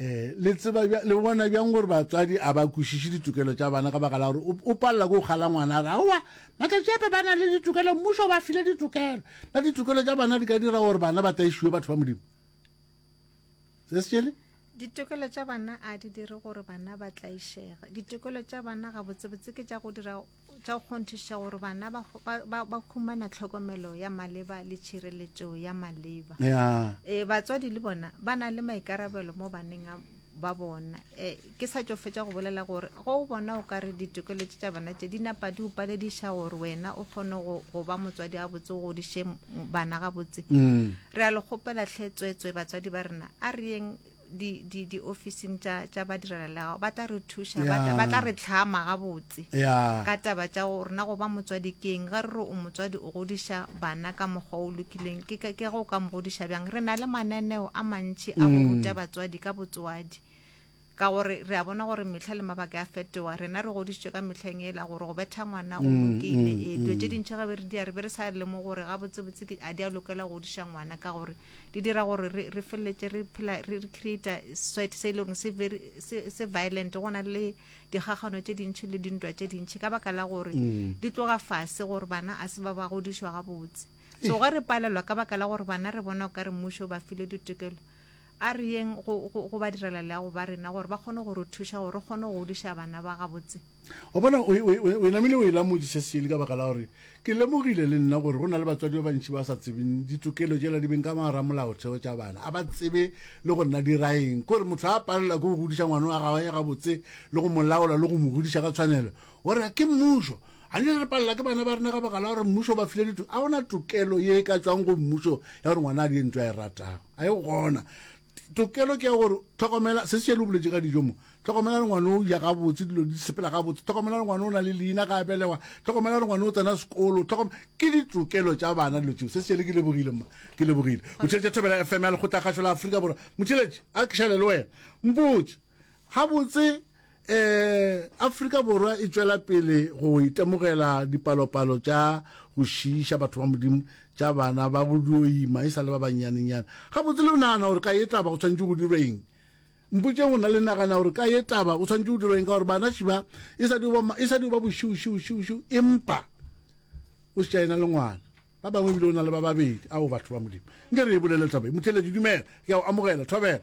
Eh, le tseba bja, le bona bjang gore batswadi a ba kwešiše ditokelo tša bana ka baka la gore o palela ke go kgala ngwana a re aowa matšatši ape ba na le ditokelo mmušo o ba file ditokelo na ditokelo tša bana di ka dira gore bana ba taišiwe batho ba modimo se se tšele ditokelo tša bana a di dire gore bana ba tlaišega ditokelo tša bana gabotsebotse ke tša go dira tša go kgonthiša gore bana ba, ba, ba, ba humana tlhokomelo ya maleba le tšhireletšo ya maleba ya e, batswadi le bona ba na le maikarabelo mo baneng a- ba bona e, ke sa tšo fetša go bolela gore ge o bona o ka re ditokelo tše tša bana tše di napa di o palediša gore wena o kgone go, go ba motswadi gabotse o godiše m- bana gabotse Mm. re a le kgopela tlhe tsweetswe batswadi ba rena a re yeng di, di, di ofising tša tša badirelalegago ba tla re thuša ba tla- ba tla re tlhama gabotse ya ka taba tša go rena go ba motswadi ke eng ge re re o motswadi o godiša bana ka mokgwa o lokileng ke ka- ke ge o ka mo godiša bjang re na le mananeo a mantši a go Mm. ruta batswadi ka botswadi ka gore re a bona gore mehla le mabaka ya fetoga rena re godisitswe ka mehleng ela gore go betha ngwana go Mm, lokile mm, ee dilo tše mm. dintšha ge be re di ya re be re sa lemo gore gabotsebotse ke- a di a lokela go godiša ngwana ka gore di dira gore re re feleletse re phela re re creator sweat se leng se very se se violent gona le digagano tse dintšhi le dintwa tse dintšhi ka baka la gore mm. di tloga fase gore bana a se ba ba godišwa ga botse so ge re palelwa ka baka la gore bana re bona o ka re mmušo ba file ditokelo a re yeng go ba direla le ya go ba rena gore ba kgone go re thuša gore re kgone go godiša bana ba gabotse Wa bona, o, o, o, o namile o ela Modisa Seeli ka baka la gore ke lemogile le nna gore go na le batswadi ba bantši ba sa tsebeng ditokelo tšela di beng ka mogara molaotheo tša bana, a ba tsebe le go nna diraeng. Kore motho a palela ke go godiša ngwana wa gawe gabotse le go mo laola le go mo godiša ka tshwanelo. O re, Ke mmušo. A ne re palela ke bana ba rena ka baka la gore mmušo o ba file dito. A go na tokelo ye e ka tšwang go mmušo ya gore ngwana a die ntho a e ratago. A e gona? Tokelo ke ya gore tlhokomela se se le boletše ka dijo mo tlhokomela ngwana o ja gabotse dilo di sepela gabotse tlhokomela ngwana o na le leina ga a belegwa tlhokomela ngwana o tsena sekolo tlhokom ke ditokelo tša bana dilo tseo se se ke lebogile mma ke lebogile motšheletše thobela fm ya lekgotla kgašo la aforika borwa motšheletše a ke šale le wena mpotse Gabotse, Afrika Borwa e tšwela pele go itemogela dipalopalo tša go šiiša batho ba Modimo tša bana ba go dio ima e sa le ba bannyanenyane. Gabotse, le nagana gore ka ye taba go swanetše go dirwe eng? Mpotšeng go na le nagana gore ka ye taba go swanetše go dirwa eng ka gore banaši ba e sa dio ba, e sa dio ba bošiušiušiušiu empa o šetša ena le ngwana. Ba bangwe ebile o na le ba babedi. Ao, batho ba Modimo, nke re e bolele taba ye. Motheeletši, dumela. Ke a go amogela. Thobela.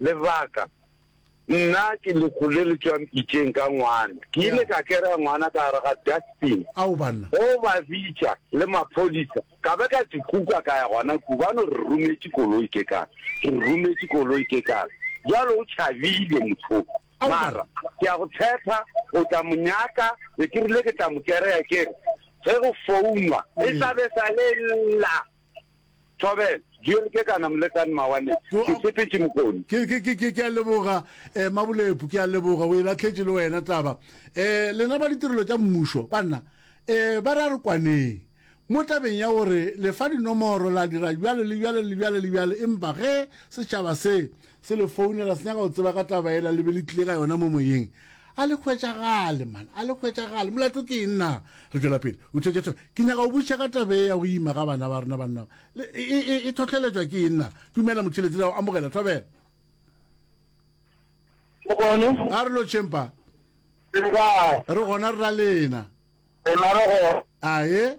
Lebaka, Nna ke lehu le le tšwang pitšeng ka ngwana. Ke ile ka kera ngwana ka gare ga dustbin go ba bitša le maphodisa. Ka be ka se kuka ka ya gona kua. Ba no re rometše koloi ke kare, ke re rometše koloi ke kare. Bjale o tšhabile motho o. Mara ke a go tshepa o tla mo nyaka. Be ke rile ke tla mo kereya ke re ge go founwa e tla be e sa le lla. Thobela, Joel ke kana molekane mawane. Ke setetše mokoni. Ke, ke, ke, ke, ke a leboga, eh, Mabulepu, ke a leboga. O e lahletše le wena taba. Eh, lena ba ditirelo tša mmušo, banna, eh, ba re a re kwaneng. Mo tabeng ya gore le fa dinomoro, la dira bjalo le bjalo le bjalo le bjalo, empa ge setšhaba se, se le founela, se nyaka go tseba ka taba yela le be le tlile ka yona mo moyeng, A le hwetšagale, man, a le hwetšagale. Molato ke eng na? Re tšwela pele. O theetša thwena, Ke nyaka go botšiša ka taba ye ya go ima ga bana ba rena banna. Le, e, e, e, e tlhohleletšwa ke eng na? Dumela, motheeletši, le a go amogela. Thobela. O bone? A re lotšheng pa. Re gona, re la lena. Rena re gona. Aye.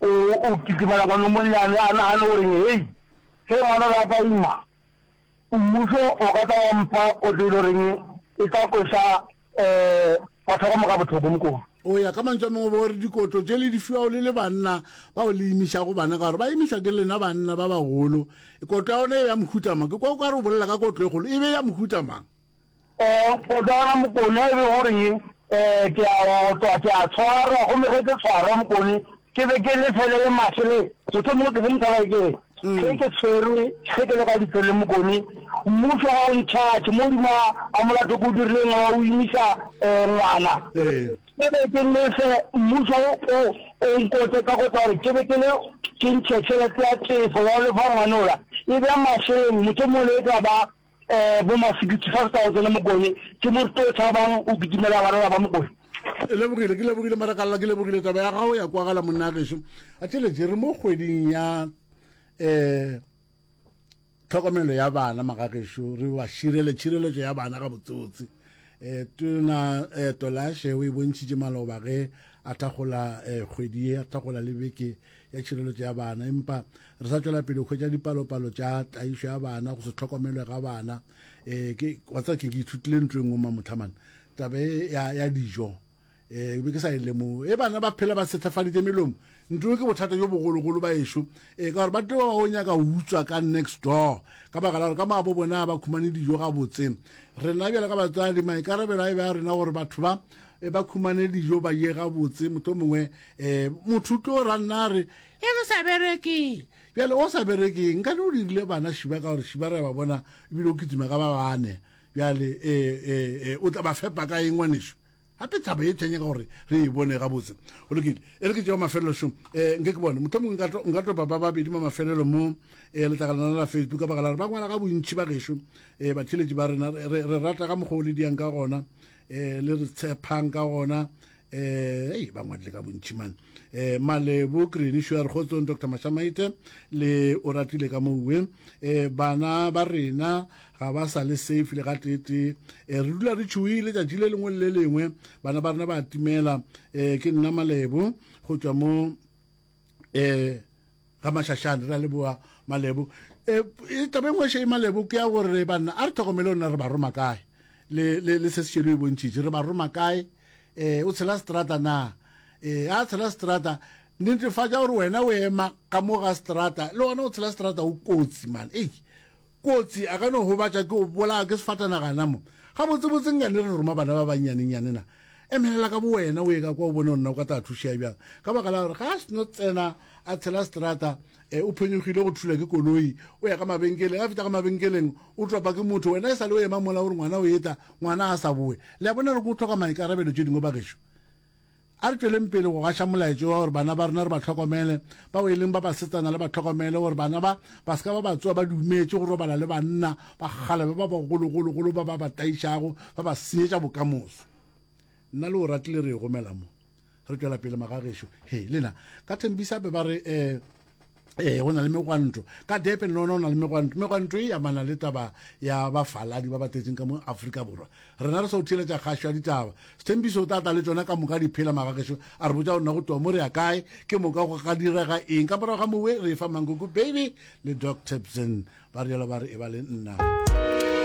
O, o kitimela kwano monnyane, a nagane o reng, Hei, ge ngwana le apa ima, Mmušo o ka tla wa mpha kotlo e le goreng e tla kweša um batho ba ka moka bothoko, Mokone. O ya, ka mantšu a mangwe, bo re dikotlo tše le di fiwago le le banna bao le imišago bana ka gore ba imišwa ke lena banna ba bagolo, kotlo ya gona e be ya mohuta mang? Ke kwa o ka re o bolela ka kotlo e kgolo, e be ya mohuta mang? O bona, Mokone, e be go re ke a otlwa, ke a tshwarwa, gomme ge ke tshwarwa, Mokone, ke be ke le fele le maswe le motho mongwe ke se mothalai ke re Mm. ge ke tshwerwe ge ke le ka ditsele mokone mmuso ga o ntšhatšhe mo dima a molato ko dirileng wa o imisa um ngwana Ee. ke be ke lefe mmuso o o nkotse ka kotsa gore ke be ke le ke ntšhe tšhelete ya tefo ya go lefa ngwanola e bja mašeleng motho mole e tla ba Eh, bo ma 65,000 le Mokone. Ke mo rute o tshabang, o kitimela barela ba Mokone. Ke lebogile, ke lebogile Marakalla, ke lebogile taba ya gago ya kwagala monna gešo. A tšeletše re mo kgweding ya eh tlhokomelo ya bana magagešo re ba širele tšhireletšo ya bana ga botsotsi eh tona eh tolashe o e bontšhitše maloba ge a thakgola eh kgwedi a thakgola le beke ya tšhireletšo ya bana empa re sa tšwela pele hwetša dipalopalo tša tlaišo ya bana go se tlhokomelwe ga bana um ke wa tseba ke ke ithutile ntlo e nngwe mamotlhamane tabe ya, ya dijo um be ke sa e lemogo e bana ba phela ba sethafaditše melomo ntlo ke bothata jo bogologolo ba ešo um ka gore ba tlo ba ba o nyaka utswa ka next door ka baka la gore ka maabo bona ba khumane dijo ga botse rena bjale ka batswadi maikarabelo a e be a rena gore batho ba e ba khumane dijo ba ye gabotse moto mongwe um motho o tlo ranna a re e ke sa bereke bjale o sa bereke nka ne o dirile bana šiba ka gore šiba re ba bona ebile o kitima ka ba bane bjale um o tla ba fepa ka eng ngwaneso gape thaba e thenya ka gore re e bone gabotse o lokile e re ke tšeo mafelelo šong um eh, nke ke bone motlho mongwe nka topa ba babedi mo mafelelo mo um eh, letlakalana la facebook ka baka la re ba ngwala ga bontšhi ba gešo um eh, batheletši ba rena re rata ka mokgwa o le diyang ka gona um le re tshepang ka gona eh ei ba ngwadile ka bontši man eh malebo green sure kgotsong dr mashamaite le o ratile ka mouwe eh bana ba rena ga ba sa le safe le ga tete eh re dula re tšhoile tšatši le lengwe le lengwe bana ba rena ba timela eh ke nna malebo go tšwa mo eh ga mashashane ra leboa malebo eh, e taba engwe še e malebo ke ya gore banna a re tlhokomele ona re ba roma kae le le le se se šelo e bontšhitše re ba roma kae eh o tshela strata na eh a tshela strata netefatša gore wena o ema ka mo ga strata le ona o tshela strata o kotsi man ei Kotsi, a ka no gobatša ke go bolaya ke sefatanaga na mo? Gabotsebotse nka ne re roma bana ba bannyanenyane na? Emelela ka bowena o ye ka kwa o bone go nna o ka tla thušea bjang, ka baka la gore ga a sno tsena a tshela seterata, e, o phonyogile go thula ke koloi, o ya ka mabenkeleng, a fihla ka mabenkeleng o topa ke motho, wena e sa le o ema mola o re ngwana o eta, ngwana a sa bowe. Le a bona gore ke go hloka maikarabelo tše dingwe bagešo? A re tšweleng pele go gaša molaetšo wa gore bana ba rena re ba hlokomele, bao e leng ba basetsana le ba hlokomele, gore bana ba ba se ka ba ba tsoa ba dumetše go robala le banna ba kgalabe ba bagologologolo ba ba ba taišago, ba ba senyetša bokamoso. Nna le Oratile re e gomela mo. Re tšwela pele, Magagešo. He, le na. Ka Thembisa be ba re, um. ee go na le megwanto ka depe le lona go na le megwanto megwanto e amana le taba ya bafaladi ba ba tletseng ka mo aforika borwa rena re sa o theeletša kgašo ya ditaba sethembiso o tla tla le tsona ka moka diphela magagešo a re botsa rona go tloa mo re ya kae ke moka go ga direga eng ka morago ga mowe re e fa mankoko baby le doc tapson ba rialo ba re e ba le nna